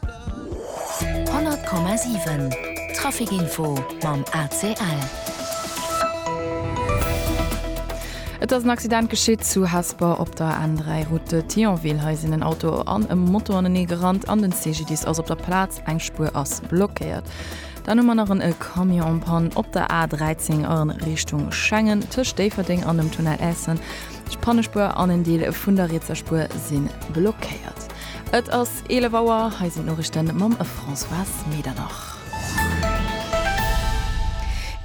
100,7 Trafic Info mam ACL. Et ass en Accident geschitt zu Hesper op der N3 Route Thionville. Hei sinn en Auto an e Moto anenee gerannt an den CGDIS ass op der Plaz. Eng Spuer ass blockéiert. Dann hu mer nach en e Camion en Panne op der A13 a Richtung Schengen tëscht Déifferdeng an dem Tunnel Essen. D'Pannespuer an en Deel vun der rietser Spuer si blockéiert. Et ass 11 Auer, hei sinn d'Noriichten mam Françoise Medernach.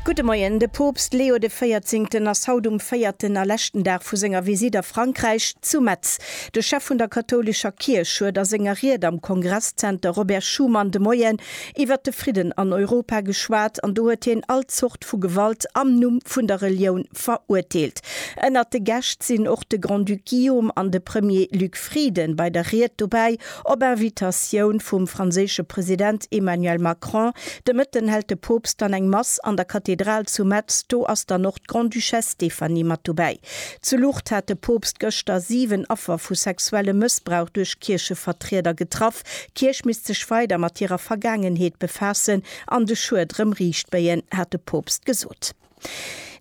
Gudde Moien, De Poopst Leo de Véierzéngten ass haut um véierten a leschten Dag vu senger Visitt a Frankräich zu Metz. De Chef vun der kathoulescher Kierch huet a senger Ried am Kongresszenter Robert Schuman de Moien iwwert de Fridden an Europa geschwat an do huet hien all Zort vu Gewalt am Numm vun der Relioun verurteelt. Ënnert de Gäscht sinn och de Grand-Duc Guillaume an de Premier Luc Frieden bei der Ried dobäi. Op Invitatioun vum franséische President Emmanuel Macron de Mëtten hält de Poopst dann eng Mass an der Kathedral zu Metz. Do ass dann och d'Grande-Duchesse Stéphanie mat dobäi. Zu Lucht hat de Poopst gëschter 7 Affer vu sexuellem Mëssbrauch duerch Kierchevertrieder getraff. D'Kierch misst sech weider mat hirer Vergaangenheet befaassen an de Schued rëm riichtbéien, hat de Poopst gesot.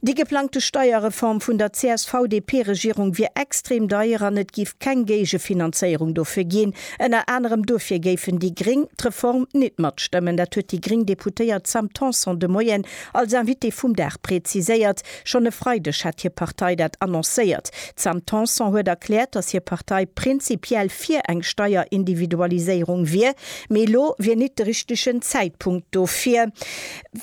Déi geplangte Steierreform vun der CSV-DP-Regierung wier extrem deier an et géif keng Géigefinanzéierung dofir ginn. Ënner anerem dofir géifen déi Gréng d'Reform nit matstëmmen. Dat huet déi gréng Deputéiert Sam Tanson de Moien als Invitée vum Dag präziséiert. Schonn e Freideg hat hir Partei dat annoncéiert. D'Sam Tanson huet erkläert, datt hir Partei prinzipiell fir eng Steierindividualiséierung wier, mee elo wier nit de richtegen Zäitpunkt dofir.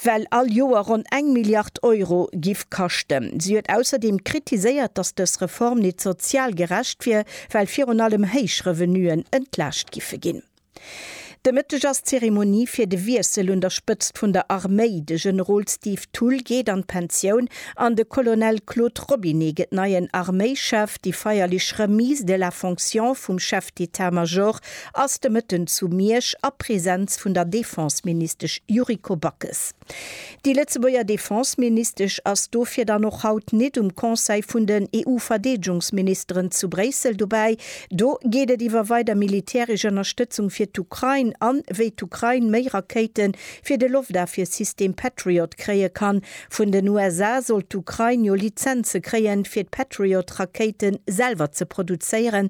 well all Joer ronn eng Milliard Euro giff kaschten. Si huet ausserdeem kritiséiert, datt dës Reform nit sozial gerecht wier, well virun allem héich Revenuen entlaascht giffe ginn. De Mëtteg ass d'Zeremonie fir de Wiessel un der Spëtzt vun der Arméi. De Generol Steve Thull geet an d'Pensioun an de Colonel Claude Robinet gëtt neien Arméichef. Déi feierlech Remise de la fonction vum Chef d'État-Major ass de Mëtten zu Miersch a Presenz vun der Defenseministesch Yuriko Backes. Déi Lëtzebuerger Defenseministesch ass dofir dann och haut nit um Conseil vun den EU-Verdeedegungsministeren zu Bréissel dobäi. Do geet et iwwer weider militäresch Ënnerstëtzung fir d'Ukrain an wéi d'Ukrain méi Rakéite fir de Loftafwiersystem Patriot kréie kann. Vun den USA sollt d'Ukrain jo Lizenze kréien, fir d'Patriot-Rakéite selwer ze produzéieren.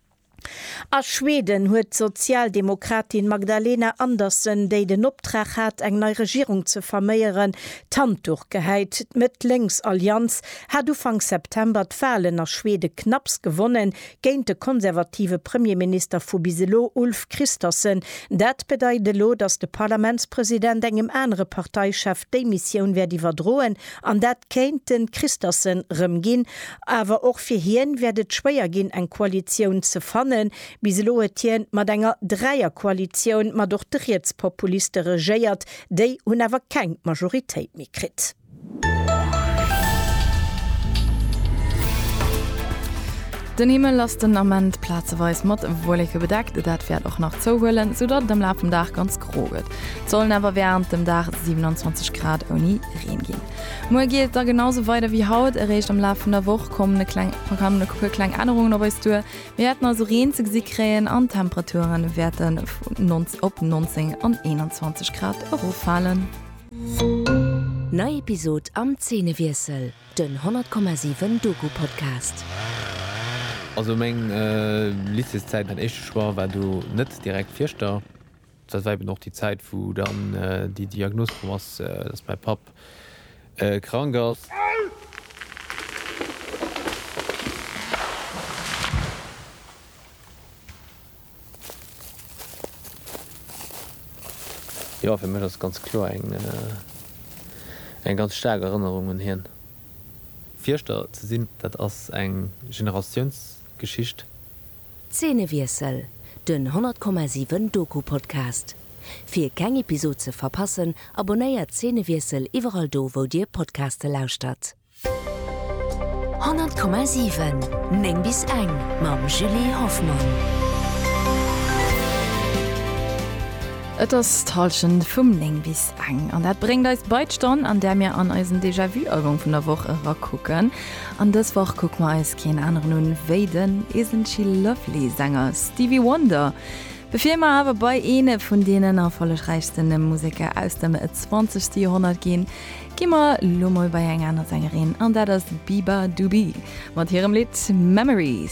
A Schweden huet d'Sozialdemokratin Magdalena Andersson, déi den Optrag hat eng nei Regierung ze verméieren, d'Handduch gehäit. D'Mëtt-Lénks Allianz hat Ufank September d'Wahlen a Schwede knapps gewonnen, géint de konservative Premierminister vu bis elo Ulf Kristersson. Dat bedeit elo, datt de Parlamentspresident engem anere Parteichef d'Démissioun wäert iwwerdroen an dat kéint de Kristersson rëm ginn. Awer och fir hien wäert et schwéier ginn eng Koalitioun ze fannen. Bis elo huet hien mat enger Dräierkoalitioun mat och de Rietspopuliste regéiert. Déi hunn awer keng Majoritéit méi kritt. Den Himmel ass den Ament plazeweis mat Wolleke bedeckt. Dat wäert och nach zouhuelen, soudatt et am Laf vum Dag ganz gro gëtt. Et sollen awer während dem Dag 27 Grad ouni Reen ginn. Muer geet et da genau sou weider wéi haut. Eréischt am Laf vun der Woch kommen e kleng kommen e puer kleng Ännerungen op eis duer. Mir wäerten also Reen ze gesi kréien an d'Temperature wäerte vun 19 op 19 an 21 Grad eroffalen. Nei Episod am Zeenewiessel, den 100,7 Doku-Podcast. Also meng Lycéeszäit, mäin éischte Choix war do net direkt Fieschter. Dat war eben och déi Zäit, wou dann déi Diagnos komm ass, dass mäi Papp krank ass. Jo, fir mech ass et ganz kloer eng ganz staark Erënnerung un hien. Fierschter ze sinn, dat ass eng Generatiounsgeschicht. Zeenewiessel, den 100,7 Doku-Podcast. Fir keng Episod ze verpassen, abonnéiert Zeenewiessel iwwerall do wou dir Podcaste lauschtert. 100,7 9 bis eng mam Julie Hoffmann. Et ass d'Hallschent vum 9 bis eng an dat bréngt eis bei d'Stonn, an där mir an eisen Déjà-vu-Album vun der Woch erakucken. An dës Woch kucke mer eis keen aneren un wéi den Is N't She Lovely? Sänger Stevie Wonder. Bevir mer awer bei eene vun deenen erfollegräichste Museker aus dem zwanzegste Joerhonnert ginn, gi mer lo mol bei eng aner Sängerin an dat ass d'Biba Dubi mat hirem Lidd Memories.